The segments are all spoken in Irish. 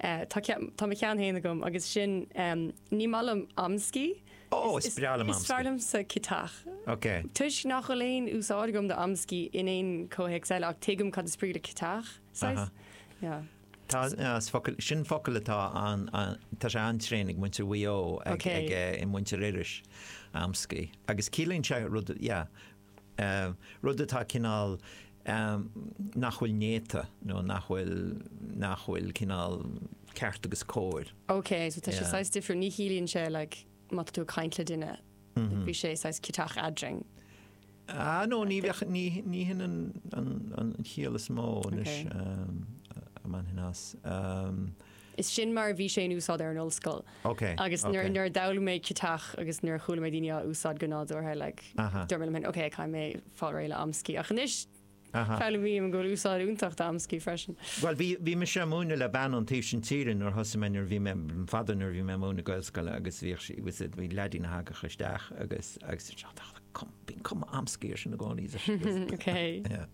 Tá ceann, tá mo cheann féin agam agus sin, ní maith liom amscaí. Ó, is breá liom amscaí. Is fearr liomsa ciotach. Ok. Toisc nach raibh aon úsáid agam d'amscaí in aon chomhthéacs eile ach tuigim cad is brí le ciotach, saghas. Yeah. Tá, is focal, sin focal atá an, tá sé an-tréan ag muintir Mhaigh Eo, ag, ag, muintir Iorrais, amscaí. Agus ciallaíonn sé rud, yeah. rud atá cineál nach bhfuil néata nó nach bhfuil nach bhfuil cineál ceart agus cóir. OK, so tá sé saghas difriúil, ní chiallaíonn sé like má tá tú ag caint le duine, bhí sé saghas ciotach eadrainn. Ah, no, ní bheadh ní ní hin an an an chiall is mó anois a bheadh i gceist. Is sin mar a bhí sé in úsáid ar an ollscoil. Ok, Agus nuair, ok. nuair a d'fhoghlaim mé ciotach agus nuair a chuala mé daoine á úsáid go nádúrtha, like, Aha. dúirt mé liom féin, ok, caithfidh mé fáil réidh le amscaí. Ach anois, Aha. foghlaimím go bhfuil úsáid iontach d'amscaí freisin. Bhuel, bhí, bhí mise ag múineadh le bean ón taobh sin tíre nuair a thosaigh mé, nuair a bhí mé, fadó nuair a bhí mé ag múineadh i nGaelscoil agus bhíodh sí, was it, bhí leadín a thagadh isteach agus, agus, bhíodh cuma amscaí ar sin i gcónaí. Ok. Yeah.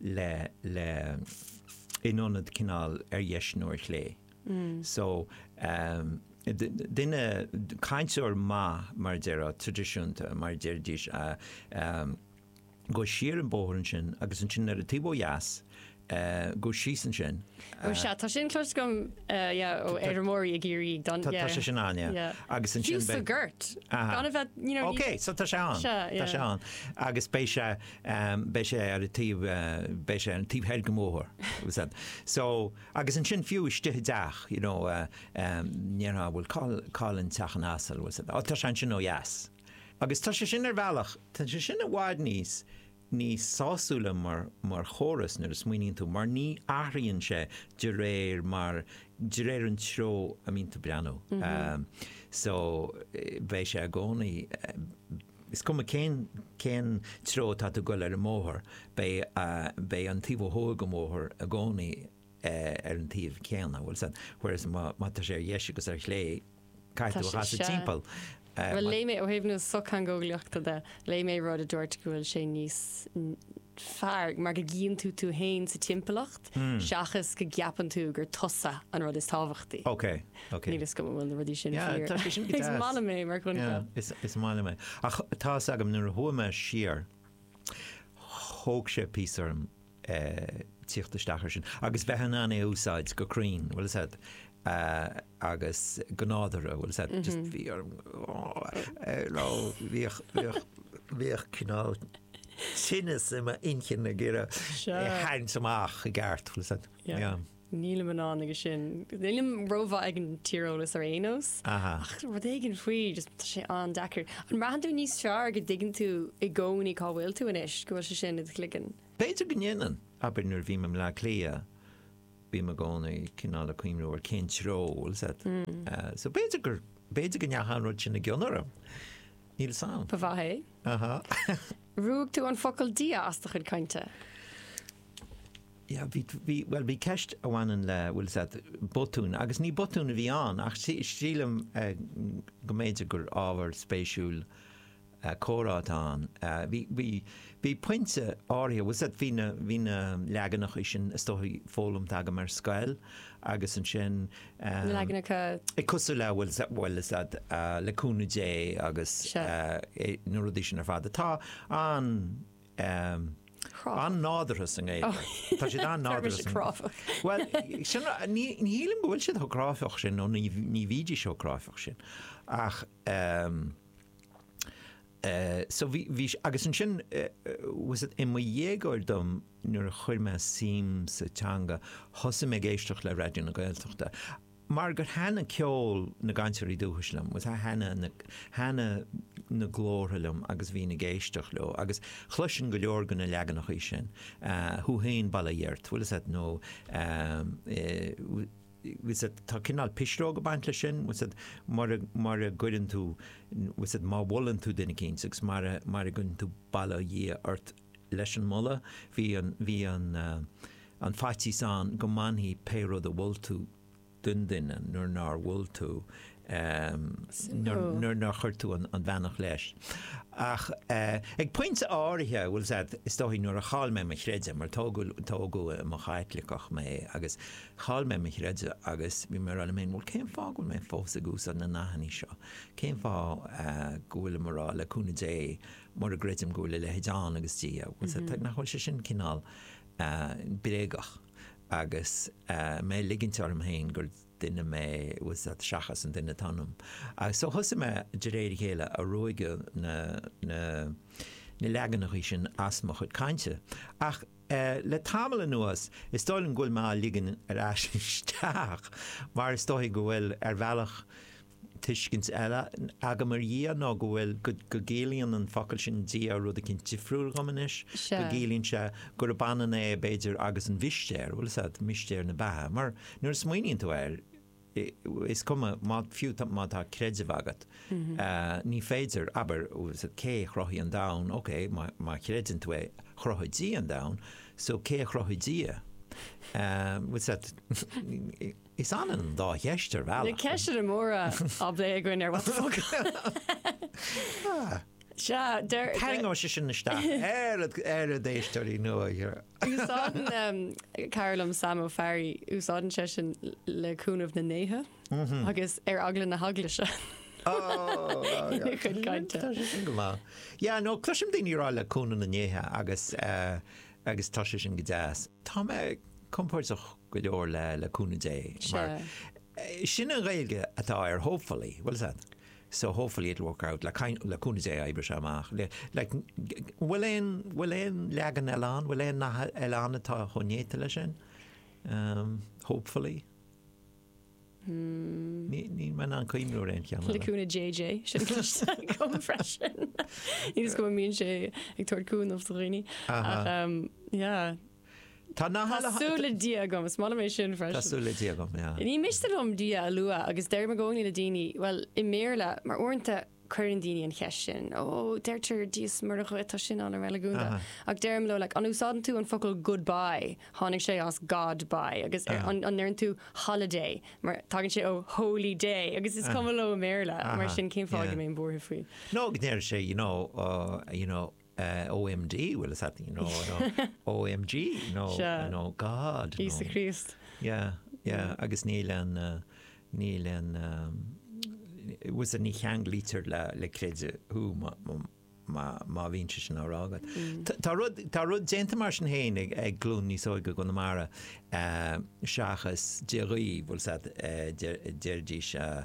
le le in ionad cineál ar dheis nó ar chlé. So duine, cainteoir maith mar a déarfá, traidisiúnta mar a déarfaidís, gabh siar an bóthar ansin agus ansin ar taobh ó dheas gabh síos ansin. Ó sea, tá sin cloiste agam, yeah, ó fheirmeoirí i gCiarraí go deimhin, yeah. Tá sé sin ann, yeah. Yeah. Agus ansin beidh. Fiú sa gort. Aha. Gan a bheith, you know, ní. Okay, so tá sé ann. Tá sé ann. Agus beidh sé beidh sé ar taobh, beidh sé ar an taobh thoir den bhóthar, agus an, so, agus ansin fiú istigh i dteach, you know, ndéarfá, bhuel, cá, cá bhfuil teach an asail, bhfuil a fhios agat, á, tá sé ansin ó dheas. Agus tá sé sin ar bhealach, tá sé sin i bhfad níos, níos sásúla mar, mar chóras nuair a smaoiníonn tú, mar ní athraíonn sé de réir mar, de réir an treo a mbíonn tú ag breathnú. So, beidh sé i gcónaí, Is cuma cén cén treo atá tú ag goil ar an mbóthar, beidh beidh an taobh ó thuaidh den bhóthar i gcónaí ar an taobh céanna, bhfuil a fhios agat, whereas má má tá sé ar dheis agus ar chlé, caithfidh Tá tú a sé chasadh sea. timpeall. Bhuel léigh mé ó thaobh na sochtheangeolaíochta de, léigh mé rud a dúirt go bhfuil sé níos fearr mar go gcíonn tú tú fhéin sa timpeallacht seachas go gceapann tú gur tusa an rud is tábhachtaí. Okay. Níl fhios agam an bhfuil na rudaí sin fíor. Is maith liom é mar choincheap. Is maith liom é. Ach tá fhios agam nuair a chuaigh mé siar thóg sé píosa orm tíocht isteach air sin agus bheith in ann é a úsáid go cruinn, bhfuil a fhios agat, agus go nádúrtha, bhfuil a fhios agat, just bhí orm, nó bhíodh cineál tinneas i m'inchinn ag iarraidh é a tharraingt amach i gceart, bhfuil a fhios agat. Nílim in ann aige sin. Nílim rómhaith ag an tíreolas ar aon nós. Aha. Ach rud éigin faoi, just tá sé an-deacair. An mbraitheann tú níos fearr go dtuigeann tú i gcónaí cá bhfuil tú anois, go bhfuil sé sin i do chloigeann? B'fhéidir go ndéanann. Abair nuair a bhím i mBleá Cliath, bím i gcónaí cineál ag cuimhniú ar cén treo, bhfuil 'fhios a'd. So b'fhéidir gur, b'fhéidir go ndeachaigh an rud sin i gcion orm. Níl 'fhios a'm. Ba mhaith é. Aha. Ruaig tú an focal 'Dia' as do chuid cainte? Yeah, bhí, bhí, bhuel, bhí ceist a bhaineann le, bhfuil 'fhios a'd, botún, agus ní botún a bhí ann ach sílim go mb'fhéidir gur ábhar spéisiúil comhrá atá ann. Bhí, bhí, bhí pointe áirithe, bhfuil 'fhios a'd, bhí na, bhí na leaganachaí sin is dóigh foghlamtha agam ar scoil agus ansin Na leaganacha? Cosúil le, bhfuil 'fhios a'd, le cúnamh Dé agus na rudaí sin ar fad atá an, Chráifeach. An-nádurtha sa nGaeilge. Cráifeach. Tá siad an-nádurtha sa. Tá siad cráifeach. Bhuel, sin, ní, ní shílim go bhfuil siad chomh cráifeach sin nó ní, ní bhídís chomh cráifeach sin. Ach, so bhí, bhí, agus ansin, bhfuil 'fhios a'd, i mo dhéagóir dom nuair a chuir mé suim sa teanga, thosaigh mé ag éisteacht le Raidió na Gaeltachta. mar gur thaitnigh ceol na gcainteoirí dúchais liom, bhfuil 'fhios a'd, thaitnigh na, thaitnigh na glórtha liom agus bhínn ag éisteacht leo agus chloisinn go leor de na leaganachaí sin, thú fhéin bail ó Dhia ort, bhfuil 'fhios a'd nó bhfuil 'fhios a'd, tá cineál pisreog a' baint leis sin, bhfuil 'fhios a'd, mura, mura gcuireann tú, bhfuil 'fhios a'd, má mholann tú duine eicínt agus mara, mara gcuireann tú bail ó Dhia ort, leis an moladh. Bhí an faitíos ann go mbainfidh pé rud a mhol tú den duine nuair nár mhol tú, nuair nár chuir tú an bheannacht leis. Ach ag pointe áirithe, bhfuil 'fhios a'd, is dóigh, nuair a chaill mé mo chreideamh, mar tógadh i mo Chaitliceach mé, agus chaill mé mo chreideamh agus bhí mé ag rá liom féin, bhuel, cén fáth go bhfuil mé fós ag úsáid na nathannaí seo? Cén fáth go bhfuilim ag rá, le cúnamh Dé, mura gcreidim go bhfuil a leithéid ann agus Dia, nach bhfuil sé sin cineál bréagach agus mé ag ligint orm féin gur duine mé, bhfuil 'fhios a'd, seachas an duine atá ionam. So thosaigh mé de réir a chéile ag ruaigeadh na leaganachaí sin as mo chuid cainte. Ach le tamall anuas, is dóigh liom go bhfuil mé á ligean ar ais isteach mar is dóigh go bhfuil, ar bhealach, tuiscint eile agam ar Dhia ná go bhfuil, go gciallaíonn an focal sin Dia rud eicínt difriúil dhom anois, go gciallaíonn sé gurb ionann é, b'fhéidir, agus an mhistéir, bhuel, is ea, mistéir na beatha, mar nuair a smaoiníonn tú air, is cuma, fiú má tá creideamh agat, ní féidir, abair, cé a chruthaigh an domhan, ok, má chreideann tú é, chruthaigh Dia an domhan, so cé a chruthaigh Dia? Bhuel, Is ionann an dá cheist ar bhealach. Na ceisteanna móra á bplé againn ar What the Focal. Sea, díreach. Tarraingeoidh sé sin isteach ar ar na héisteoirí nua go leor. Úsáideann cara liom Sam Ó Fearraigh, úsáideann sé sin le cúnamh na ndéithe agus ar eagla na heaglaise ina chuid cainte. Tá sé sin go maith. Yeah, no, cloisim daoine ag rá le cúnamh na ndéithe agus eh, agus tá sé sin go deas. Tá mé compordach go leor le le cúnamh Dé mar sin an Ghaeilge atá ar hopefully bhuel is ea so hopefully it'll work out le kind le cúnamh Dé oibreoidh sé amach le like bhfuil aon bhfuil aon leagan eile ann bhfuil aon nath eile ann atá chomh néata leis sin? hopefully. Ní maith ná an caomhnóir é an ceann eile. Cúnamh JJ, sin cloiste agam freisin. Níl a fhios agam an mbíonn sé ag tabhairt cúnaimh do dhaoine ach yeah. Inshallah. Tá súil le Dia agam, is maith liom é sin freisin. Tá súil le Dia agam, yeah. Ní miste liom Dia a lua agus deirim i gcónaí le daoine, bhuel, i mBéarla, mar uaireanta, Cuireann daoine an cheist sin, Ó, deirtear Dia is Muire dhuit, tá sin an-reiligiúnach. Ach deirim leo, like, an úsáideann tú an focal goodbye? Tháinig sé as God bye. Agus ar, an, an ndeireann tú holiday? Mar tagann sé ó holy day. Agus is cuma leo i mBéarla. Mar sin, cén fáth go mbeinn buartha faoi? Nó go ndeir sé, you know, uh, you know, OMD, well is that, you know, you know OMG, you know, Sure. you know, God. you Íosa know. Críost. Yeah, yeah, agus níl an, uh, níl an, um, was a ní cheanglaítear le, le creideamh thú má, má, má, má bhíonn sé sin á rá agat. Tá- Tá rud, tá rud déanta mar sin fhéin ag, ag glún níos óige go ndéarfaidh, seachas Dia dhaoibh, bhfuil a fhios agat, uh, deirdís uh,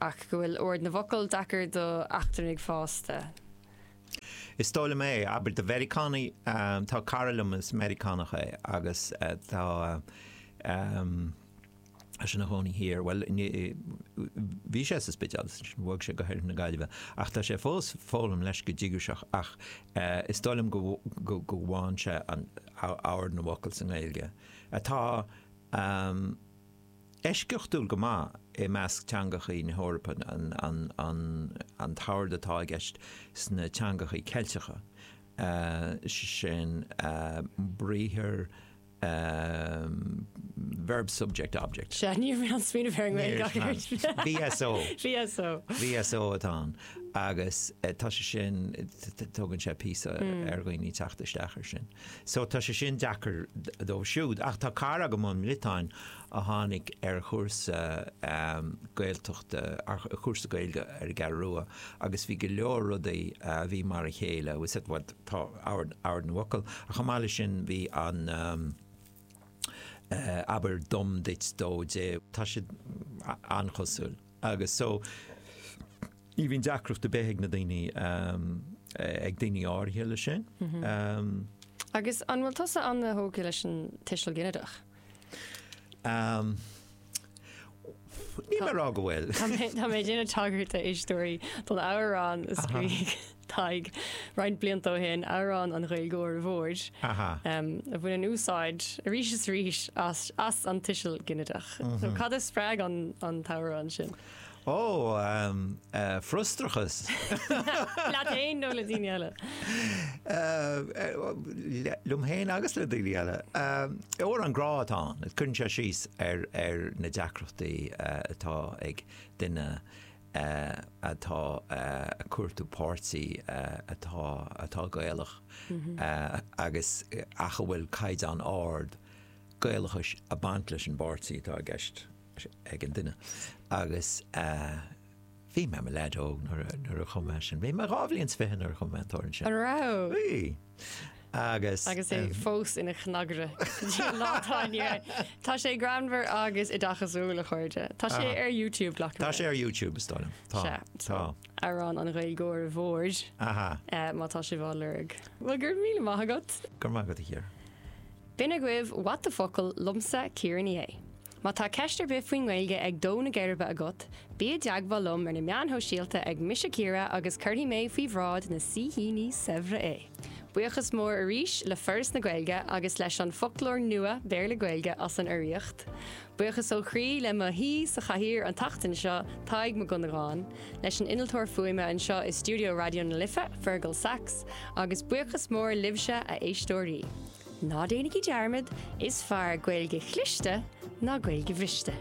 ach go bhfuil ord na bhfocal deacair do eachtrannaigh fásta. Is dóigh liom é, abair do Mheiriceánaigh, tá cara liom is Meiriceánach é agus tá sé ina chónaí thiar, bhuel, bhí sé sa Spidéal agus ansin bhog sé go hOirthear na Gaillimhe ach tá sé fós ag foghlaim leis go díograiseach ach is dóigh liom go bhfaigheann sé an ord na bhfocal sa nGaeilge atá eisceachtúil go maith i measc teangachaí na hEorpa an t-ord atá i gceist sna teangachaí Ceilteacha, sin briathar verb-subject-object. Sea, ní raibh mé ag smaoineamh ar an nGaeilge ach an oiread. VSO. VSO. VSO atá ann agus tá sé sin, tógann sé píosa ar dhaoine teacht isteach ar sin. So tá sé sin deacair dóibh siúd. Ach tá cara agam ón mBriotáin a tháinig ar chúrsa Gaeltachta, ar chúrsa Gaeilge ar an gCeathrú Rua agus bhí go leor rudaí a bhí mar a chéile, he said bhuel tá ord na bhfocal ach chomh maith leis sin bhí an eh abair dom duit dó dé, tá siad an-chosúil agus so, Ní bhíonn deacracht ar bith ag na daoine, ag daoine áirithe leis sin. Agus an bhfuil tusa an-tógtha leis an tuiseal ginideach? Ní foláir go bhfuil. Tá mé ag déanamh tagairt a éisteoirí don amhrán a scríobh Tadhg roinnt blianta ó shin, Amhrán an Ghaeilgeora Mhóir, a bhaineann úsáid arís is arís as an tuiseal ginideach. Cad a spreag an t-amhrán sin? Ó, frustrachas. Leat fhéin nó le daoine eile? Liom fhéin agus le daoine eile. Amhrán grá atá ann, cuireann sé síos ar na deacrachtaí atá ag duine atá ag cuartú páirtí atá Gaelach agus ach a bhfuil caighdeán ard Gaelachais ag baint leis an bpáirtí atá i gceist. ag an duine agus bhí mé i mo leaid óg nuair a chum mé sin. Bhí mé dhá bhliain 's fiche nuair a chum mé an t-amhrán sin. An raibh? Bhí. Agus. Agus é fós ina chnagaire go dtí an lá atá inniu ann. Tá sé greannmhar agus oideachasúil, a chairde. Tá sé ar YouTube, glacaim. Tá sé ar YouTube, is dóigh liom. Sea. Tá. Amhrán an Ghaeilgeora Mhóir. Aha. Má tá sibh á lorg. Bhuel, go raibh míle maith agat. Go raibh maith agat, a Chiara. B'in agaibh What the Focal liomsa, Ciara Ní É. Má tá ceist ar bith faoin nGaeilge ag dó na geirbe agat, bí i dteagmháil liom ar na meáin shóisialta ag Mise Ciara agus cuirfidh mé faoi bhráid na saoithíní saibhre é! Buíochas mór arís le Foras na Gaeilge agus leis an Foclóir Nua Béarla-Gaeilge as an urraíocht. Buíochas ó chroí le mo shaoi sa chathaoir an tseachtain seo, Tadhg Mac Dhonnagáin, leis an innealtóir fuaime anseo i stiúideo Raidió na Life, Fergal Sachs, agus buíochas mór libhse, a éisteoirí! Ná déanaigí dearmad, is fearr Gaeilge chliste ná Gaeilge bhriste.